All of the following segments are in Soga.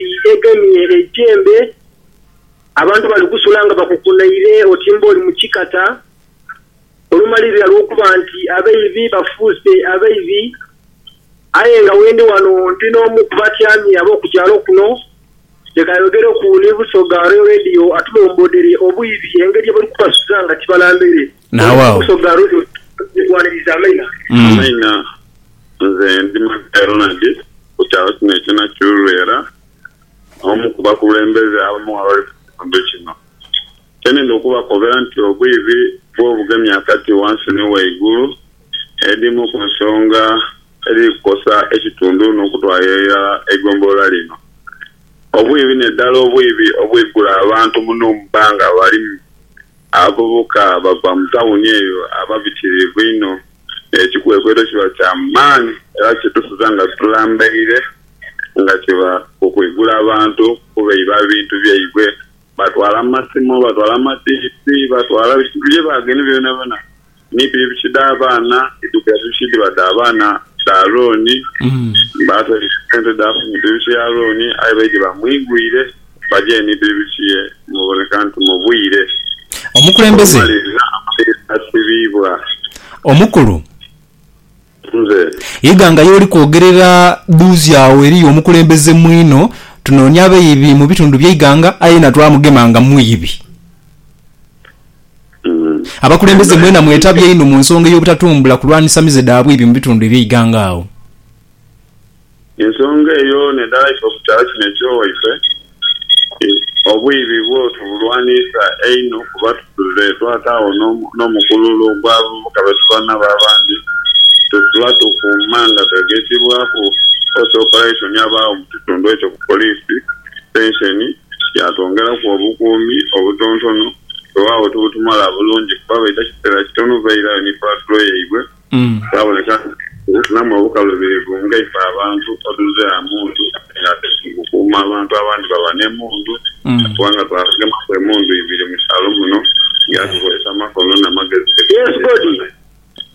Egemye eijembe, abantu bali kusula nga bakukunaire oti mb'oli mu kikata, olumalirira lw'okuba nti abaibi bafuuse abaibi. Aye nga wendi ghano ndi n'omu ku batyamye ab'oku kyalo kuno, leka ayogereku ni Busoga Royal Radio atulomboodhere obwibi engeri ye bali kubasuza nga tibalambere. Naagho agho. Amaina, Nze ndi Matia Ronald ku kyalo kino ekye Nakyirulwera, omu ku bakulembeze abamu abali mu kitundu kino. Kyenidha okubakobera nti obwibi bw'obugemya akati wansi ni waigulu edhimu ku nsonga edhiri kukosa ekitundu n'okutwalira irala eigombolola lino. Obwibi n'edhala obwibi obwigula abantu muno mu bbanga balimu. Abavubuka abava mu tawuni eyo aba bitiriivu inho. Ekikwekweto kiba kya maani era kidusiza nga tulambaire nga kiba ku kwigula bantu kubeiba ebintu byaibwe. Batwala amasimu, batwala amadiisi, batwala bye baagenhe byonabyona. ni bibichi dha baana edhigabibwidwa dhiba dha baana ba Arooni. Baatola sente dhaafa mu bibichi ya Arooni, aye baidhi bamwigwire baje ni bibichi ye muboneka nti mubwire Omukulembeze. obumaliriza, amaliiriza asibiibwa. Omukulu. Nze. Iganga y'oli kwogerera dhuuzi agho eriyo omukulembeze mwino. Tunoonia abaibi mu bitundu by'eighanga aye na twamugema nga mwibi. Abakulembeze mwena mwetabye inho mu nsonga ey'obutatumbula kulwanisa mize dha bwibi mu bitundu eby'eighanga agho. Ensonga eyo n'edhalaisa okukyalo kino eky'owaife, obwibi bwo tubulwaniisa einho kuba tuzudde twataagho n'omukululo ogw'abavubuka be tuba nabo abandi be tuba tukuuma nga twegekibwaku Force Operation abagho mu kitundu ekyo ku poliisi sitenseni yaatwongeraku obukuumi obutontono. Weewaawo tibutumala bulungi kuba baidha kiseera kitono bairayo ni paatulo yaibwe. Kyaboneka nti okufunamu obukalubirivu nga ife abantu otuze gha mundu ate nga ate tuli kukuuma abantu abandi baba n'emundu kubanga twagemaku emundu ibiri mu kyalo muno nga tukozesa amakono na magezi. Yes God.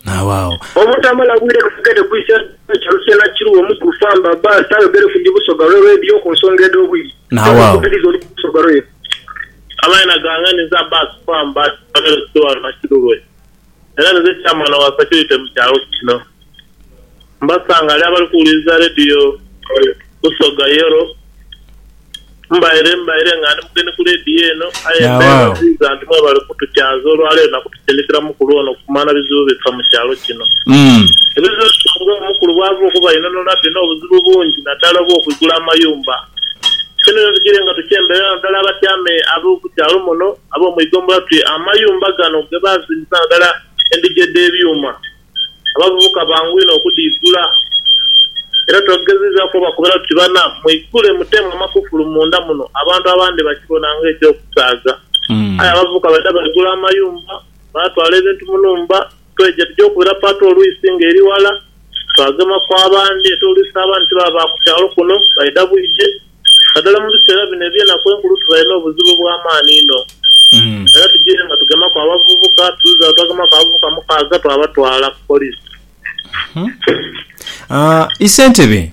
Naawaawo. Obutamala bwire kafugedhe kwisa nti kyalo kya Nakiru omu ku Famba bbaasi ayogere ku dhi Busoga lwe leediyo ku nsonga edh'obwire Naawaawo. n'okukubiriza oludda Busoga lwe. Amaina gange ni Zabasi Famba, kyalo kiri ghano Nakiru lwe. era nze Chairman wa security mu kyalo kino. Mbasangale abali kuwuliriza Radio Busoga Yellow. Mbaire mbaire nga ndi mugeni ku Radio eno aye mbeebaziiza nti mwebale kutukyaaza olwaleero na kutusindikira mukulu ono kumanha bizibu bifa mu kyalo kino. Ebizibu bino nga omukulu bwava okubainhonhola bino obuzibu bungi naddala obw'okwigula amayumba. Kino bino tugiire nga tukyemberera naddala abatyame ab'omu kyalo muno. ab'omu ighombolola tuti, Amayumba gano ge baazimbisa nga ghala endhigi edh'ebyuma, abavubuka bangu inho okudhiigula. Era twagezizaaku obakobera tuti, Bana, mwigule muteemu amakufulu munda muno, abantu abandi bakibona ng'eky'okusaaga. Aye abavubuka baidha baigula amayumba, baatwala ebintu mu nhumba. Twegya tugy'okubira Pato olwisi nga eri ghala, twagema ku abandi ate olwisi abandi tibaba ba ku kyalo kuno, baidha bwidhe. Naddala mu biseera bino eby'enaku enkulu tubaire n'obuzibu obw'amaani inho. Era tugyiire nga tugemaku abavubuka, tuluzi agho twagemaku abavubuka mukaaga twabatwala ku poliisi. Aa, Isentebe.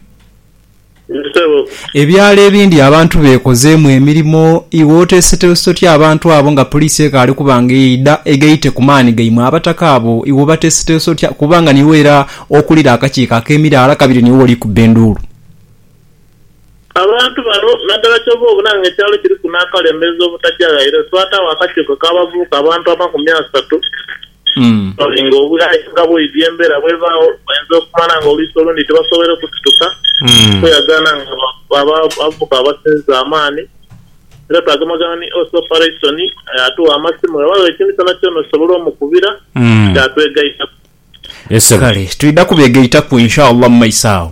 Yes sebo. Ebyalo ebindi abantu bekozeemu emirimo, iwe oteeseteese otya abantu abo nga poliisi ekaali okuba nga eidha eghaite ku maani gaimwe? Abataka abo iwe obateeseteese otya kuba nga niiwe era okulira akakiiko ak'emiraala kabiri niiwe oli kubba enduulu? Abantu bano naddala kyova obona nga ekyalo kiriku n'akalembezo obutagya ghaire, twataagho akakiiko ak'abavubuka abantu amakumi asatu Kale nga obughayoga bwaidhi embera bwebagho, oinza okumanya nga oluisi olundi tibasoboire kusituka kweyagaana nga bavubuka abasinza amaani. Era twagemagana ni Ose Oparaisoni yatugha amasimu bwebagho ekintu kyonakyona osobola omukubira kyatwegaitaku. Kale twidha kubegaitaku Inshallah mu maiso agho.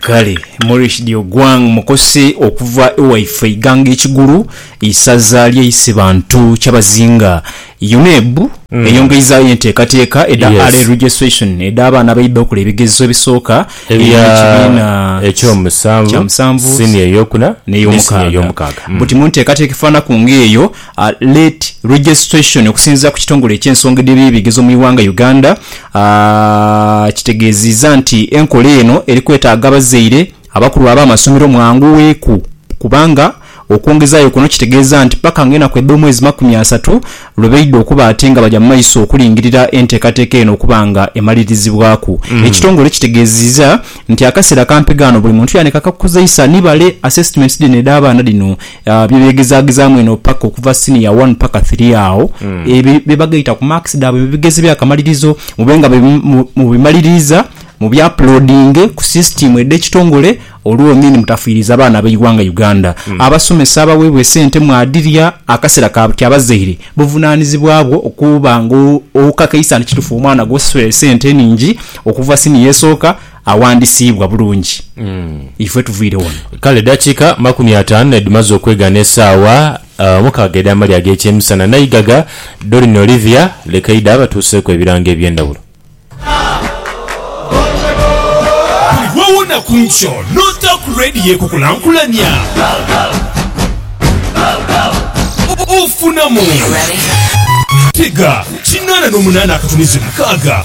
Kale Maurice Diogwang mukose okuva e waife Iganga e Kigulu, isaza lye Isibantu Kyabazinga. UNEB eyongeizaayo enteekateeka edha Early Yes. Registration edh'abaana abaidha okola ebigezo ebisooka Ebya eby'ekibiina eky'omusanvu, kya musanvu senior ey'okuna, ne ne senior senior ey'omukaaga. ey'omukaaga. Mm. Buti mu nteekateeka efaanaku ng'eyo, a late registration okusinziira ku kitongole eky'ensonga edh'ebyebigezo mu ighanga Uganda a kitegeeziiza nti enkola eno eri kwetaaga abazaire abakulu ab'amasomero mwangugheku kubanga okwongezaayo kuno kitegeeza nti paka nga enaku edh'omwezi makumi asatu lwe baidha okuba ate nga baja mu maiso okulingirira enteekateeka eno okuba nga emalirizibwaku Ekitongole kitegeeziiza nti akaseera kampi ghano buli muntu yaanika akakuzeisa ni bale assessments dhino edh'abaana dhino Bye begezaagezaamu eno paka okuva siniya wani paka thiri agho. Ebyo bye bagaita ku maakisi dhaabwe mu bigezo eby'akamalirizo mube nga mubimaliriiza mubyapuloodinge ku sisitiimu edh'ekitongole olwo ni mutafiiriza baana b'eighanga Uganda. Abasomesa abaweebwa esente mwadhirya akasera ka buti abazaire buvunaanizibwa bwo okuba nga okakaisa nti kitufu omwana gw'osasulira esente enhingi okuva siniya esooka awandisiibwa bulungi ife tuviire wano. Kale edakika makumi ataanu nedimaze okwegha n'esaawa omukaaga edh'amalya ag'ekyemisana, Naigaga Doreen Olivia Lekaida abatuuseeku ebirango eby'endhawulo. Buli lw'owona ku nkyo n'ota ku leediyo ekukulankulania, ofunamu. Tega kinaana n'omunaana akatunzi mukaaga